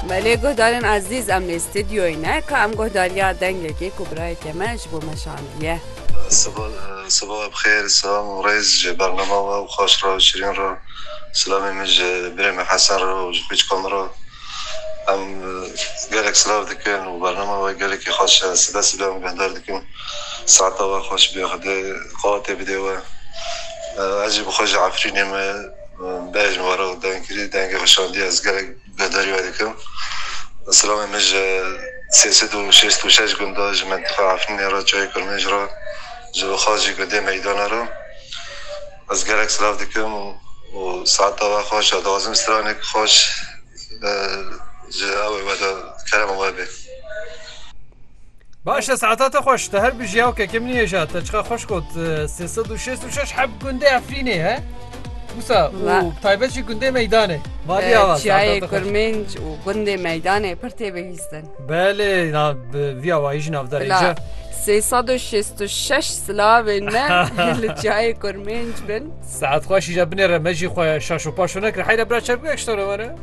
Me lê guhdarên ezîz em lê stûdyoyê ne ka em guhdariya dengekê ku birayeke me ji bo me şandiye. Sibaha bi xêr, selam û rêz ji bernama we û xweş re û şirîn re. Silamê min ji birê me Hesen re û ji qîçka min re. Em gelek silav dikin û bernama we gelekî xweş e. Sibe sibe em guhdar dikin. Saeta we xweş be, Xwedê qewatê bidê we. Ez jî bi xwe ji Efrînê me. Bejn were û dengkirî dengê weşandî ez gelek guhdarî wedikim. Silamê min ji sê sed û şêst û şeş gunda ji mentiqa Efnînê re Çayê Kurmêj re ji bo Xacî gundê Meydana re ez gelek silav dikim û saeta we xweş e dixwazim stranek xweş ji ew ê wede kerema we bê. Baş e saeta te xweş. Te her bi jiyaw ke kim nihêja te çiqa xweş got sê sed û şêst û şeş heb gundê Efrînê he. Wisa û bi taybet jî gundê Meydanê. Valiya wa. Çiyayê Kurminc û gundê Meydanê pir tê bihîstin. Belê viya wayî jî navdarê ca. Sê sed û şêst û şeş silavên me li çiyayê Kurminc bin. Saet xweş îja binê re me jî xwe şaş û paşo nekir. Heyre bira çerpgek ji te re were.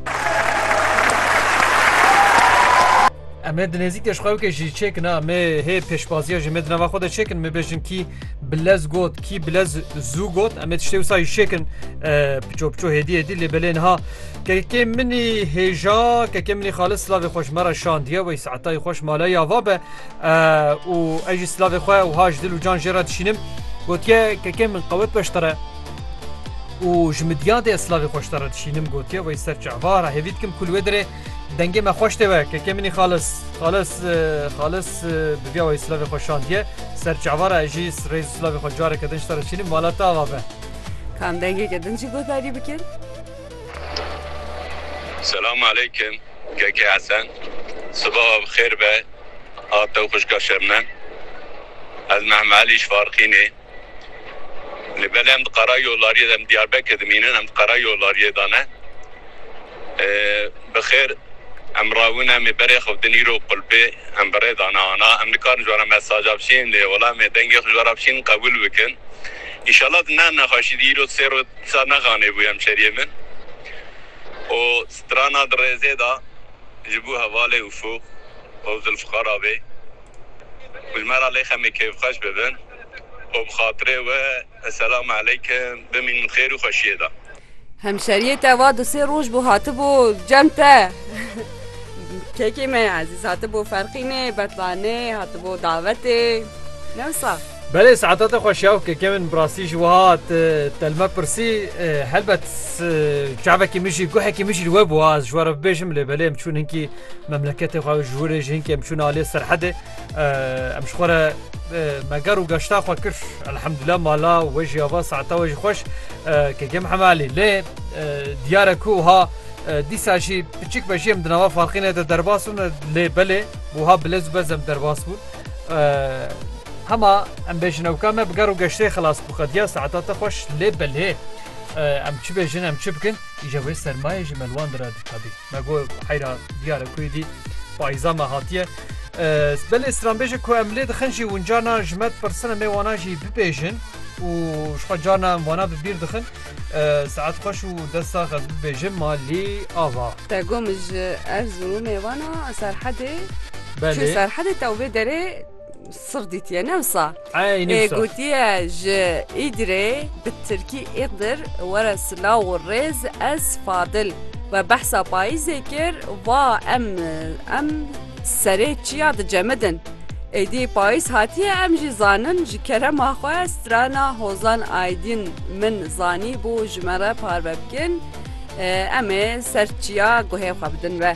Em ê di nêzîk de ji xwe wekê jî çêkin ha me hê pêşbaziya jê me di nava xwe de çêkin me bêjin kî bilez got kî bilez zû got em ê tiştê wisa jî çêkin piço piço hêdî hêdî lê belê niha kekê minî hêja kekê minî xalis slavê xweş me re şandiye wey saetayî xweş mala ya va be û ez jî slavê xwe û haj dil û can jê re dişînim gotiye kekê min qewet beş te re û ji midya de slavê xweş te re dişînim gotiye wey ser çavara hêvî dikim kulwê dirê Dengê me xweş tê we kekê minî xalis xalis xalis bi vîya wayî silavê xwe şandiye ser çavara ez jî rêz silavê xwe careke din ji te re çînîm mala te ava be. Kam dengêke din jî guhdarî bikin. Selam aleykim keke Hesen sibawa bi xêr be a te û xwişka Şebnem ez Mehme Elî ji Farxînê. Lê belê em di Karayolariyê de em Diyarbekir dimînin em di Karayolariyê de ne. Bi xêr em rawin em ê berê xewtin îro qulpê em bi rê dane ana em nikarin ji wara mesaja bişînin lê wala em ê dengê xwe ji wara bişînin qebûl bikin. Înşala di ne nexweşî de îro sê roj disa nexanê bû hemşeriyê min û strana di rêzê de ji bo hevalê Ufuk û Zilfixar abê û ji me re lê xemê kêfxweş bibin. Xwe bi xatirê we. Eselam eleykim. Bimîn bi xêr û xweşiyê de. Hemşeriyê te va du sê roj bû hatibû cem te. Kekê me ezîz hatibû ferqînê, betlanê, hatibû davetê. Ne wisa? Belê saeta te xweş ya û keke min bi rastî ji wiha te li me pirsî. Helbet çavekî min jî guhekî min jî li we bû ez ji we re bibêjim lê belê em çûn hinkî memleketê xwe ji wir ê jî hinkî em çûn aliyê serhedê. Em ji xwe re meger û geşta xwe kir elhemdullah mala we jî ava saeta we jî xweş kekê Mihemed Elî lê diyare ku ha dîsa jî piçik be jî em di nava farqîne de derbas bûn lê belê wiha bilez û bez em derbas bûn hema em bêjin ewka me bi ger û geştê xilas bû qediya saeta te xweş lê belê em çi bêjin em çi bikin îje wê sermayê ji melwan dira dîta bî. Me got bi heyra diyar e ku êdî payîza me hatiye. Belê stranbêjê ku em lê dixin jî hûn carna ji me dipirsine me wana jî bibêjin û ji xwe carna em wana bi bîr dixin. Saet xweş û dest sax ez bibêjim ma lê ava. Te got min ji Erzurumê wana Serhedê. Belê. Serhedê te û vê derê Sif dîtiye ne wisa. Ey ne wisa. Gotiye ji Îdirê bi Tirkî Îqdir were silaw û rêz ez Fadil we behsa payîzê kir va em em serê çiya dicemidin. Êdî payîz hatiye em jî zanin ji kerema xwe strana Hozan Aydin min zanî bû ji me re parve bikin em ê ser çiya guhê xwe bidin we.